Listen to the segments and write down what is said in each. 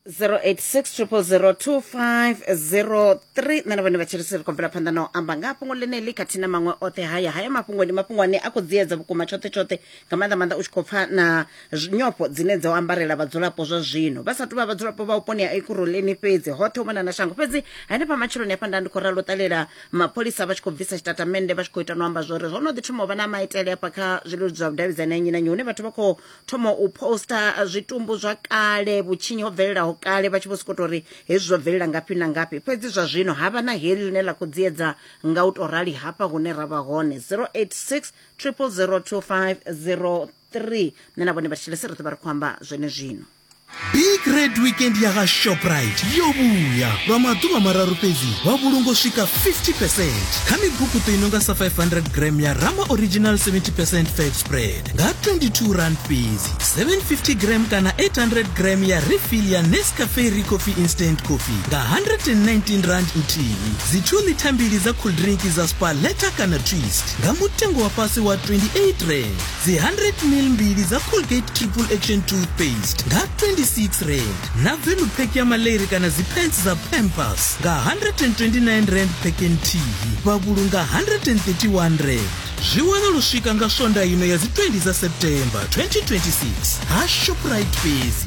0860002503 nṋe na vhone vhatshilisiri ri khou bvela phanḓa na u amba nga fhungo ḽeneḽi khathihi na maṅwe oṱhe haya haya mafhungo ndi mafhungo ane a khou dziedza vhukuma tshoṱhe tshoṱhe nga maanḓa maanḓa u tshi khou pfa na zwi- nyofho dzine dzo ambarela vhadzulapo zwa zwino vha sa tou vha vhadzulapo vha vhuponi ha ekuroleni fhedzi hoṱhe u mona na shango fhedzi hanefha matshiloni hafha nda ndi khou ralo u ṱalela mapholisa vha tshi khou bvisa tshitatamennde vha tshi khou ita no amba zwori zwo no ḓi thoma u vha na maitele hafha kha zwileludzi zwa vhudavhidzani ha nnyi na nnyi hune vhathu vha khou thoma u poster uh, zwitumbu zwa kale vhutshinyi ho bvelelaho kale vha tshi vho sokou tou ri hezwi zwo bvelela ngafhi na ngafhi fhedzi zwa zwino ha vha na heḽi ḽine ḽa khou dziedza nga u tou rali hafha hune ra vha hone 086 0002503 nṋe na vhone vha thetshelese ri ḓo vha ri khou amba zwene zwino big red weekend ya ga shoprite yo vhuya lwa maḓuvha mararu fhedzi vha vhulungo swika 50 percent kha mibukuṱo i no nga sa 500 gram ya rama original 70 percent fat spread nga 22 rand fhedzi 750 gram kana 800 gram ya refill ya nescafe re coffee instant coffee nga 119 rand nthihi dzi 2 lita mbili dza cool drink dza spa leta kana twist nga mutengo wa fhasi wa 28 rand dzi 100 mil mbili dza colgate triple action toothpaste nga 26 rand na velu pack ya maleri kana dzipants dza pampers nga 129 rand pack and tv vha vhulunga 131 rand zwi wana lu swika nga swonda ino ya dzi 20 dza september 2026 ha shoprite fhedzi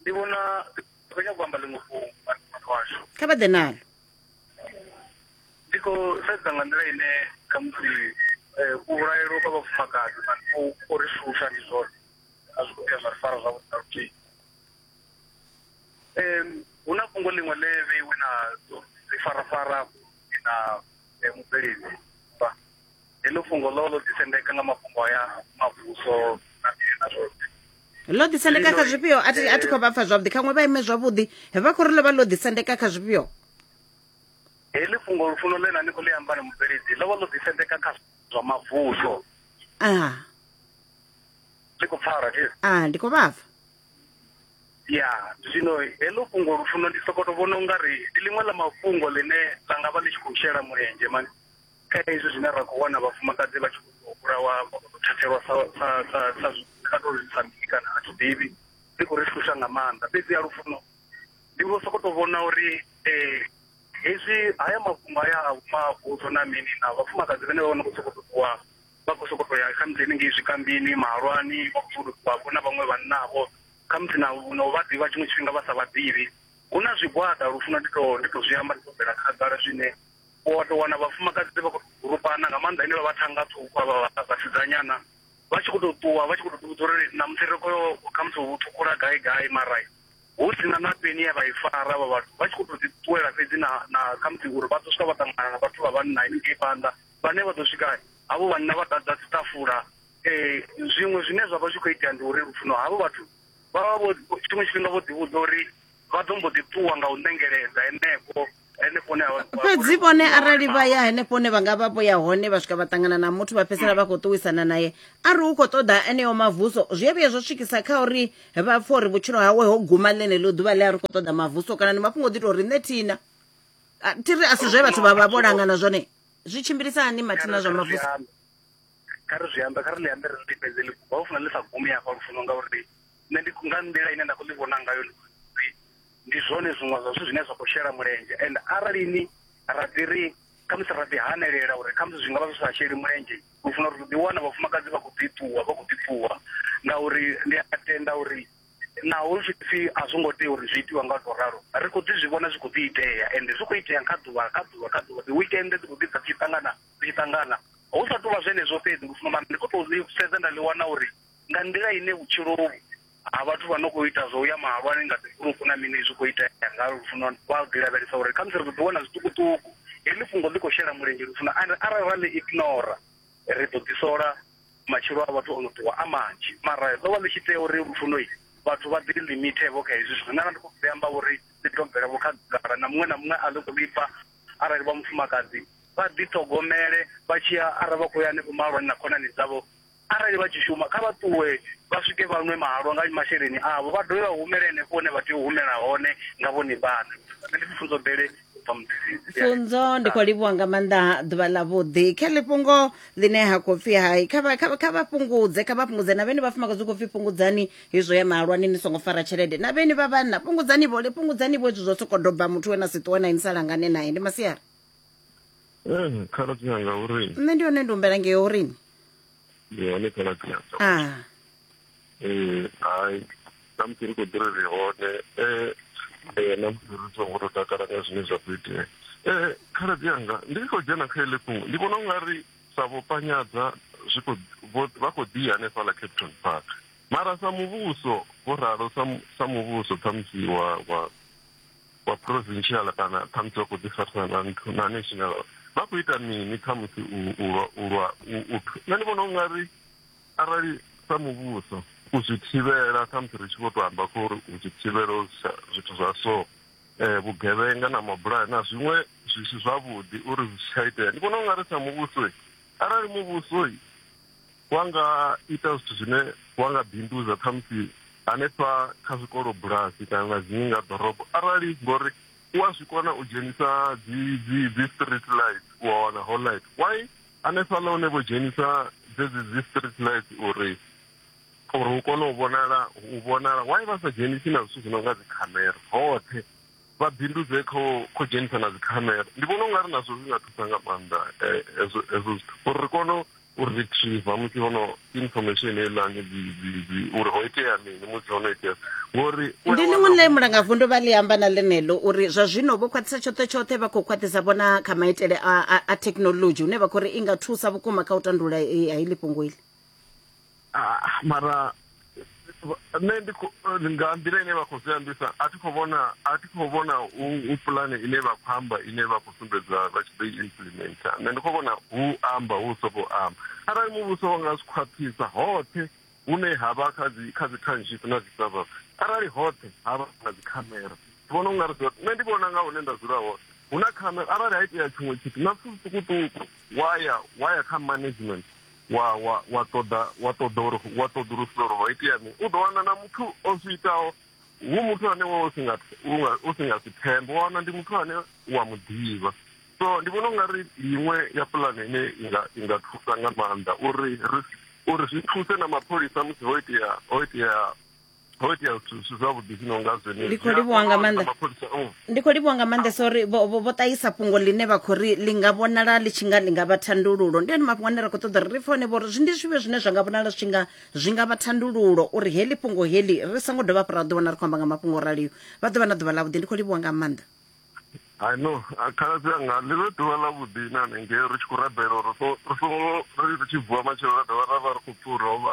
ndi vhona ndi khou nyanga u amba ḽiṅwe fhungo nga muṱa washu kha vha ḓe nalo ndi khou sedza nga nḓila ine khamusi eh, u vhulaelwa kwa vhafumakadzi na u u ri shusha ndi zwone a zwi khou vhuya zwa ri fara zwavhuḓi na luthihi Em, hu na fhungo ḽiṅwe ḽe vheiwe na ḽi farafara na eh, mubveledzi Heḽo fhungo ḽo ḽo ḓisendeka nga mafhungo aya mavhuso na na zwoṱhe ḽo ḓisendeka kha zwifhio a thi a thi khou vha pfa zwavhuḓi khaṅwe vha ime zwavhuḓi vha khou ri ḽo vha ḽo ḓisendeka kha zwifhio heḽi fhungo lufuno ḽe na ni khou ḽi amba ni mubveledzi ḽo vha ḽo ḓisendeka kha zwa mavhuso a ndi khou pfara thi a ndi khou vha pfa ya zwino heḽo fhungo lufuno ndi sokoto vhona ungari ndi ḽiṅwe ḽa mafhungo ḽine ḽa nga vha ḽi tshi khou shela mulenzhe mani Kha izwi zwine ra khou wana vhafumakadzi vha tshi khou vhulawa vha khou thathelwa sa sa sa sa sa to sa mini kana a tshiḓivhi ndi khou ri shusha nga maanḓa fhedzi ya lufuno ndi vho soko to vhona uri eh hezwi haya mafhungo haya a vhuma vhudzo na mini na vhafumakadzi vhane vha vha no khou sokou ṱuwa vha khou sokou to ya kha musi henengei zwikambini mahalwani vha khou sokou ṱuwa vho na vhaṅwe vhanna vho kha musi na na u vha ḓivha tshiṅwe tshifhinga vha sa vha ḓivhi hu na zwigwada lufuno ndi to ndi to zwi amba ndi to bvela khagala zwine u wa tou wana vhafumakadzi vha khou gurupana nga maanḓa ine vha vha thanga ṱhukhu avha vha vhasidzanyana vha tshi khou tou ṱuwa vha tshi khou tou ḓivhudza uri ṋamusi ri khou yo khamusi u ṱhukhula gai gai mara hu si na na peni ye vha i fara avha vhathu vha tshi khou tou ḓi ṱuwela fhedzi na na khamusi uri vha ḓo swika vha ṱangana na vhathu vha vhanna haningei phanḓa vhane vha ḓo swika havho vhanna vha ḓadza dziṱafula um zwiṅwe zwine zwa vha zwi khou itea ndi uri lufuno havho vhathu vha vha vho tshiṅwe tshifhinga vho ḓivhudza uri vha ḓo mbo ḓi ṱuwa nga u ṋengeledza henefho fhedzi vhone arali vha ya henefho hune vha nga vha vho ya hone vha swika vha ṱangana na muthu vha fhedzisela vha khou ṱuwisana naye a ri u khou ṱoḓa eneo mavuso zwi a vhuya zwo swikisa kha uri vha pfha uri vhutshilo hawe ho guma ḽeneḽo ḓuvha ḽe a ri khou ṱoḓa mavuso kana ndi mafhungo ḓi tou ri nṋe thina thi ri a si zwe vhathu vha vha vho langana zwone zwi tshimbilisa hani mathina zwa mavuso kha ri zwi ambe kha ri ḽi ambe ri ḽi fhedze ḽi guma u funa ḽi sa gumi hafha lufuno ngauri nṋe ndi nga nḓila ine nda khou ḽi vhona ngayo ndi uri ndi zwone zwiṅwe zwa zwithu zwine zwa khou shela mulenzhe and arali ni ra ḓi ri khamusi ra ḓi hanelela uri khamusi zwi nga vha zwi sa sheli mulenzhe u funa uri ḓi wana vhafumakadzi vha khou ḓi ṱuwa vha khou ḓi ṱuwa ngauri ndi a tenda uri naho zwi pfi a zwo ngo tea uri zwi itiwa nga to ralo ri khou ḓi zwi vhona zwi khou ḓi itea ende zwi khou itea kha ḓuvha kha ḓuvha kha ḓuvha dzi weekend dzi khou ḓi dza tshi ṱangana dzi tshi ṱangana hu sa tou vha zwenezwo fhedzi ndi khou tou sedza nda ḽi wana uri nga nḓila ine vhutshilo uvhu ha vhathu vha no khou ita zwo uya mahalwani nga dzigurupu na mini zwi khou itea nga lufuno vha ḓi lavhelesa uri khamusi ri ḓo ḓi wana zwiṱukuṱuku heḽi fhungo ḽi khou shela mulenzhe lufuno and arali ra ḽi ignora ri ḓo ḓi sola matshilo a vhathu ono ṱuwa a manzhi mara ḽo vha ḽi tshi tea uri lufuno vhathu vha ḓi limite vho kha hezwi zwithu nṋe ndi khou ḓi amba uri ḽi tou bvela vho khagala na muṅwe na muṅwe a ḽi khou ḽipfa arali vha mufumakadzi vha ḓi ṱhogomele vha tshi ya arali vha khou ya hanefho mahalwani na khonani dzavho Arali vha tshi shuma, kha vha ṱuwe vha swike vha nwe mahalwa nga masheleni avho, vha dovhe vha humele henefho hune vha tea u humela hone nga vhone vhaṋe. Nṋe ndi Pfunzo Bele u bva Muḓizidzi. pfunzo ndi khou livhuwa nga maanḓa ḓuvha ḽa vhuḓi kha ḽi fhungo ḽine ha khou pfhi hai kha vha- kha vha- kha vha fhungudze kha vha fhungudze na vhene vhafumakadzi hu khou pfhi fhungudzani hezwo ya mahalwani ni songo fara tshelede na vhene vha vhanna fhungudzani vhole fhungudzani vho hezwi zwo sokou doba muthu we na si ṱuwe na ini sa langane naye ndi masiari Eh, khaladzi anga uri nṋe ndi hone ndi humbela ngei uri ndi hone khaladzi anga a Eh, hai namusi ri khou ḓiri ri hone eh, eh, namusi ri songo tou takala nga zwine zwa khou itea Eh, khaladzi anga ndi tshi khou dzhena kha ele fhungo ndi vhona u nga ri sa vho panyadza zwi khou vho- vha khou ḓi ya hanefhaḽa capton park mara sa muvhuso vho ralo sa mu- sa muvhuso khamusi wa wa wa provincial kana khamusi vha khou ḓi farisana na nthu na national vha khou ita mini khamusi u lwa u lwa u nṋe ndi vhona u nga ri arali sa muvhuso u zwi thivhela khamusi ri tshi vho to amba kho uri u zwi thivhela zwithu zwa so um vhugevhenga na mabulayo na zwiṅwe zwi si zwavhuḓi uri zwi si tsha itea ndi vhona u nga ri sa muvhuso arali muvhuso wa nga ita zwithu zwine wa nga bindudza khamusi hanefha kha zwikolo bulasi kana zwiṅwe nga ḓorobo arali ngori u a zwi kona u dzhenisa dzi dzi dzi street light u a wana ho light why hanefhaḽa hune vho dzhenisa dzedzi dzi street light uri uri u kone u vhonala u vhonala why vha sa dzhenisi na zwithu zwi no nga dzikhamera hoṱhe vha bindudze kho kho dzhenisa na dzikhamera ndi vhona u nga ri nazwo zwi nga thusa nga maanḓa eh, hezwo hezwo zwithu uri ri kone u retriever musi hono information heiḽani uri ho itea mini musi hono itea ngori ndi ḽiṅwe ḽe mulangavundu vha ḽi amba na ḽeneḽo uri zwa zwino vho khwaṱhisa tshoṱhe tshoṱhe vha khou khwaṱhisa vhona kha maitele a thekhinolodzhi hune vha khou ri i nga thusa vhukuma kha u tandulula eh, ha iḽi fhungo iḽi Ah, mara nṋe ndi kho- nga nḓila ine vha khou zwi ambisa a thi khou vhona a thi khou vhona hu hu pulane ine vha khou amba ine vha khou sumbedza vha tshi ḓo i implementa nṋe ndi khou vhona hu amba hu sokou amba arali muvhuso wa nga zwi khwaṱhisa hoṱhe hune ha vha kha dzi kha dzi township na dzi suburb arali hoṱhe ha vha na dzi khamera ndi vhona u nga ri zwi- nṋe ndi vhona nga hune nda dzula hone hu na khamera arali ha itea tshiṅwe tshithu na zwithu zwiṱukuṱuku wa ya wa ya kha management wa, wa, wa ṱoḓa wa ṱoḓa uri wa ṱoḓulusa uri ho itea mini u ḓo wana na muthu o zwi itaho hu muthu ane wa u si nga u si nga si thembe wa wana ndi muthu ane wa mu ḓivha so ndi vhona u nga ri iṅwe ya pulane ine inga inga thusa nga maanḓa uri ri uri zwi thuse na mapholisa musi ho itea ho itea ho itea zwithu zwi si zwavhuḓi zwi no nga zwenezwi Ndi khou livhuwa nga maanḓa. mapholisa mm. ndi khou livhuwa nga maanḓesa uri vho vho- vho ṱahisa fhungo ḽine vha khou ri ḽi nga vhonala ḽi tshi nga ḽi nga vha thandululo ndi one mafhungo ane ra khou ṱoḓa uri ri pfe hone vhori zwi ndi zwivhe zwine zwa nga vhonala zwi tshi nga zwi nga vha thandululo uri heḽi fhungo heḽi ri songo dovha hafhu ra ḓi wana ri khou amba nga mafhungo o raliyo vha ḓo vha na ḓuvha ḽavhuḓi ndi khou livhuwa nga maanḓa I know a khaladzi anga ḽi vhe ḓuvha ḽa vhuḓi na hanengei ri tshi khou rabela uri ri so- ri songo ri ri tshi vuwa matshelo ra dovha ra vha ri khou pfi u rovha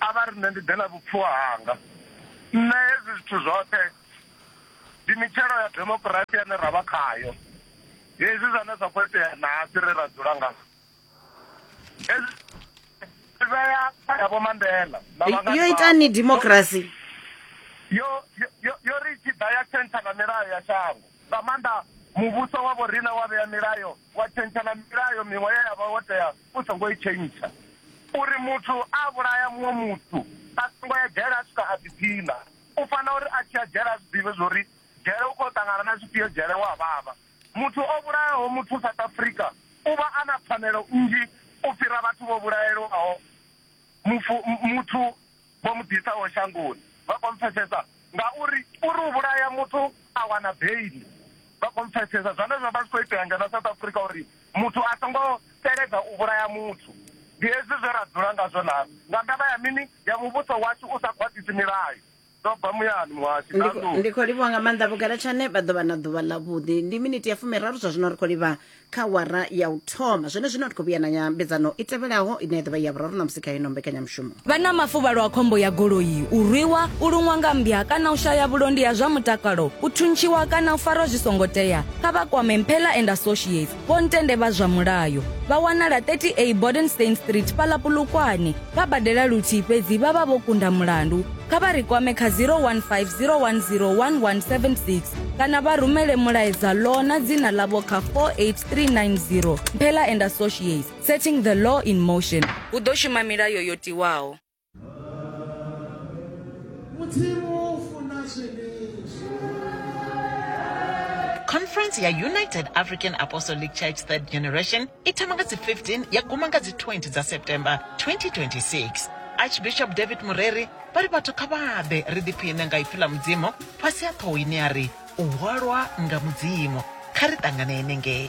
A vha ri, Nṋe ndi ḓe na vhupfiwa hanga. Nṋe hezwi zwithu zwoṱhe ndi mitshelo ya demokirasi ine ra vha khayo. Hezwi zwane zwa khou itea nahasi ri ra dzula nga hezwi zwi vhea kha ya Vho Mandela na vhangani Yo itani demokirasi? Yo, yo, yo, yo ri tshi ḓa ya tshentsha na milayo ya shango. Nga maanḓa muvhuso wa vhoriṋe wa vhea milayo, wa tshentsha na milayo miṅwe ye ya vha wo tea U songo i tshentsha. Uri muthu a vhulaya muṅwe muthu, a songo ya dzhele a swika a ḓiphiṋa. U fanela uri a tshi ya dzhele a zwi ḓivhe zwa uri dzhele u khou yo ṱangana na zwifhio, dzhele hu a vhavha. Muthu o vhulayaho muthu South Africa u vha a na pfanelo nnzhi u fhira vhathu vho vhulaelwaho mufu, muthu. vho mu ḓisaho shangoni vha khou mpfesesa ngauri uri u vhulaya muthu a wana beili vha khou mpfesesa zwone zwo vha zwi khou itea ngeno South Africa uri muthu a songo teledza u vhulaya muthu ndi hezwi zwe ra dzula ngazwo na nga ndavha ya mini ya muvhuso washu u sa khwaṱhisi milayo ndo bva muyani muhasho ndi khou livhuwa nga maanḓa vhugalatshane vha ḓo vha na ḓuvha ḽa vhuḓi ndi miniti ya fumiraru zwa zwino ri khou livha kha wara ya u thoma zwenezwino ri khou vhuya na nyambedzano i tevhelaho ine ya ḓovha ya vhuraru ṋamusi kha ino mbekanyamushumo Vha na mafuvhalo a khombo ya goloi, u rwiwa, u luṅwa nga mmbya kana u shaya vhulondi ha zwa mutakalo, u thuntshiwa kana u farwa zwi songo tea? Kha vha kwame Mphela and Associates, Vho Ntende vha zwa mulayo. Vha wanala 30A Bodenstein Street fhaḽa Polokwane. Vha badela luthihi fhedzi vha vha vho kunda mulandu. kha vha ri kwame kha 0150101176 kana vha rumele mulaedza law na dzina ḽavho kha 48390 mphela and associates setting the law in motion hu ḓo shuma milayo yo tiwaho conference ya united african apostolic church third generation i thoma nga dzi 15 ya guma nga dzi 20 dza september 2026 Archbishop David Mureri vha ri vhathu kha vha ḓe ri ḓiphiṋe nga ipfi ḽa Mudzimu fhasi ha ṱhoho ine ya ri u hwalwa nga Mudzimu. Kha ri ṱangane henengei.